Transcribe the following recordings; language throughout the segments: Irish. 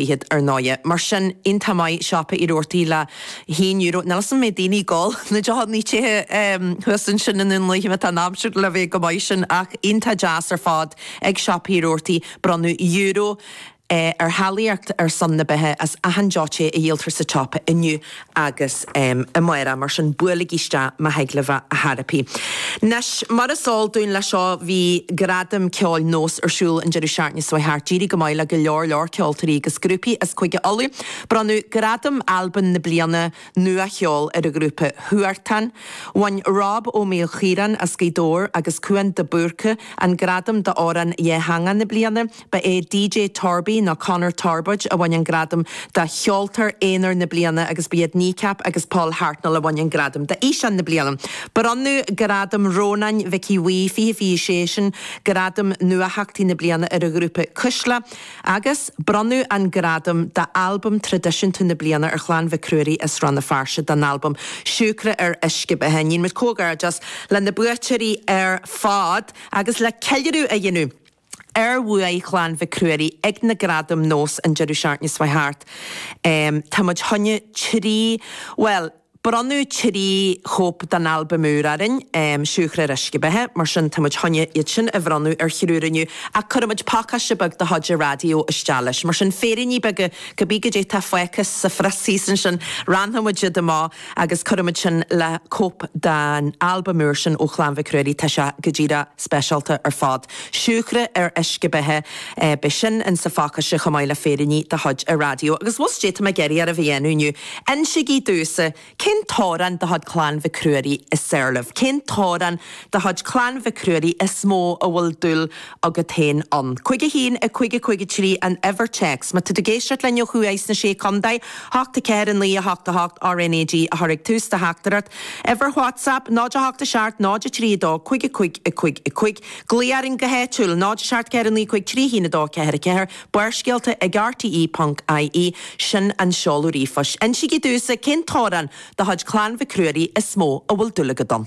fichead, ar ndóighe. Mar sin, iontach maith siopa Rabhartaigh le haon euro, níl 'fhios a'm an mbeidh daoine ag gol na deochanna te thuas ansin i nDún Laoghaire má tá an aimsir le bheith go maith sin ach iontach deas ar fad ag siopa Rabhartaigh bronnadh euro ar Ghaeltacht ar son na beatha as achan deoch te a dhíoltar sa tsiopa inniu agus i mBéarla. Mar sin, buailigí isteach má thig libh ar chor ar bith. Anois, mar is eol dúinn leis seo, bhí Gradam Ceoil Nós ar siúl an deireadh seachtaine seo thart. D'éirigh go maith le go leor leor ceoltóirí agus grúpaí as Cúige Uladh. Bronnadh Gradam Albam na Bliana Nua Cheoil ar an ghrúpa Huartán. Bhain Rob Ó Maoilchiaráin as Gaoth Dobhair agus Cuan de Búrca an gradam d'Amhrán Dhátheangach na Bliana. Ba é DJ Torby nó Conor Torbóid a bhain an gradam do Cheoltóir Aonair na Bliana agus ba iad Kneecap agus Paul Hartnoll a bhain an gradam d'Fhíseán na Bliana. Bronnadh Gradam Rónáin Mhic Aodha Bhuí 2026, sin gradam Nuatheachtaí na Bliana, ar an ghrúpa Cuisle agus bronnadh an gradam d'Albam Traidisiúnta na Bliana ar Chlann Mhic Ruairí as Rann na Feirste don albam Siúcra ar Uisce Beatha. Níonn muid comhghairdeas le na buaiteoirí ar fad agus le ceiliúradh a dhéanamh. ar bhuaidh Chlann Mhic Ruairí ag na gradaim Nós an deireadh seachtaine seo thart. Tá muid choinne trí, bhuel, bronnadh trí chóip dá n-albaim úr orainn, Siúcra ar Uisce Beatha, mar sin tá muid choinne iad sin a bhronnadh ar thriúr inniu ach cuirfidh muid pacáiste beag de chuid an raidió isteach leis, mar sin féiríní beaga, cibé goidé tá fágtha sa phrios thíos ansin, roinnfidh muid iad amach. agus cuirimid sin le cóip den albam úr sin ó Chlann Mhic Ruairí, tá sé go díreach speisialta ar fad. Siúcra ar uisce beatha, beidh sin in sa phacáiste chomh maith le féiríní de chuid an raidió. Agus an bhfuil a fhios cad é atá mé ag iarraidh oraibh a dhéanamh inniu, insigí domhsa cén t-amhrán de chuid Clann Mhic Ruairí is fearr libh, cén t-amhrán de chuid Clann Mhic Ruairí is mó a bhfuil dúil agat féin ann. Cúig a haon a cúig a cúig a trí an uimhir téacs. Má tá tú ag éisteacht linn ó thuaidh sna Sé Contae, a hocht a ceathair a naoi a hocht a hocht RNAG a chur ag tús do theachtaireacht. Uimhir WhatsApp, 0 8 a seacht 0 3 2 cúig a cúig a cúig a cúig. Glaoigh orainn go háitiúil, 0 a seacht ceathair a naoi cúig trí haon a dó a ceathair a ceathair Barrscéalta ag rte ponc ie, sin an seoladh ríomhphoist. Insigí domhsa cén t-amhrán de chuid Clann Mhic Ruairí is mó a bhfuil dúil agat ann.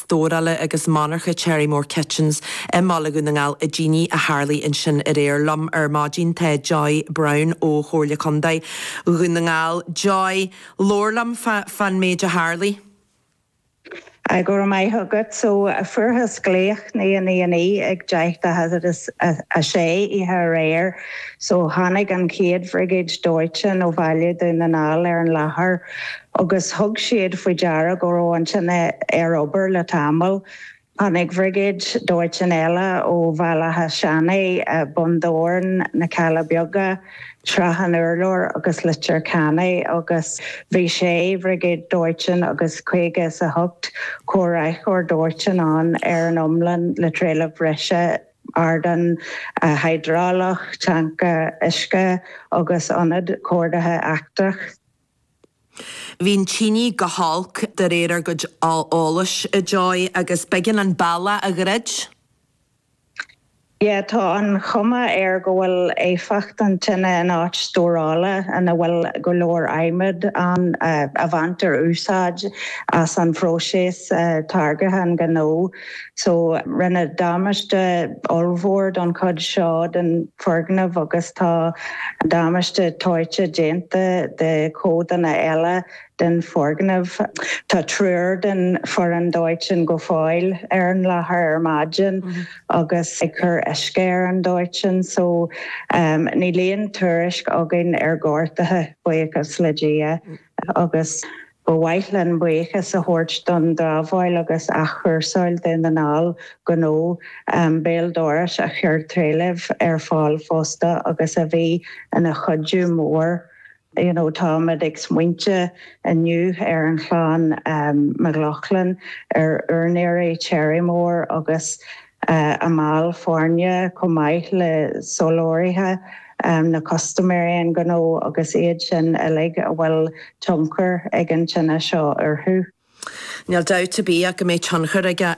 stórála agus monarcha Cherrymore Kitchens i mBaile Dhún na nGall i dtine a tharlaigh ansin aréir. Liom ar maidin tá Joy Browne ó Chomhairle Contae Dhún na nGall. Joy, labhair liom fán méid a tharlaigh. Go raibh maith agat. So fuarthas glaoch naoi a naoi a naoi ag deich tar éis a sé oíche aréir. So tháinig an chéad bhrigéid dóiteáin ó Bhaile Dhún na nGall ar an láthair. agus thug siad faoi deara go raibh an tine ar obair le tamall. Tháinig briogáid dóiteáin eile ó Bhaile Átha Seanaidh, Bun Dobhráin, Na Cealla Beaga, Srath an Urláir agus Leitir Ceanainn agus bhí sé briogáid dóiteáin agus caoga is a hocht comhraiceoir dóiteáin ann ar an iomlán le trealamh breise ardán hiodrálach, tancaer uisce agus ionad comhordaithe eachtra. Bhí an tine go holc de réir ár gcuid eolais, a Joy, agus b'éigean an bealach a dhruid. Yeah, tá an chuma air go bhfuil éifeacht an tine in áit stórála ina bhfuil go leor adhmaid ann a bhaintear úsáid as an phróiseas táirgthe an ghnó. Rinneadh damáiste ollmhór don chuid seo den foirgneamh agus tá damáiste toite déanta do chodanna eile den foirgneamh. Tá triúr den foireann dóiteáin go fóill ar an láthair ar maidin agus ag cur uisce ar an dóiteán. Níl aon tuairisc againn ar ghortuithe, buíochas le Dia. agus ba mhaith linn buíochas a thabhairt don dramhaíl agus athchúrsáil Dhún na nGall gnó béal dorais a chuir trealamh ar fáil fosta agus a bhí ina chuidiú mór you know Táimid ag smaointiú inniu ar an Chlann McLaughlin, ar úinéirí Cherrymore agus. a mbaill foirne chomh maith le soláthraithe ná custaiméirí an gnó agus iad sin uilig a bhfuil tionchar ag an tine seo orthu. Níl dabht ar bith ach go mbeidh tionchar aige ar.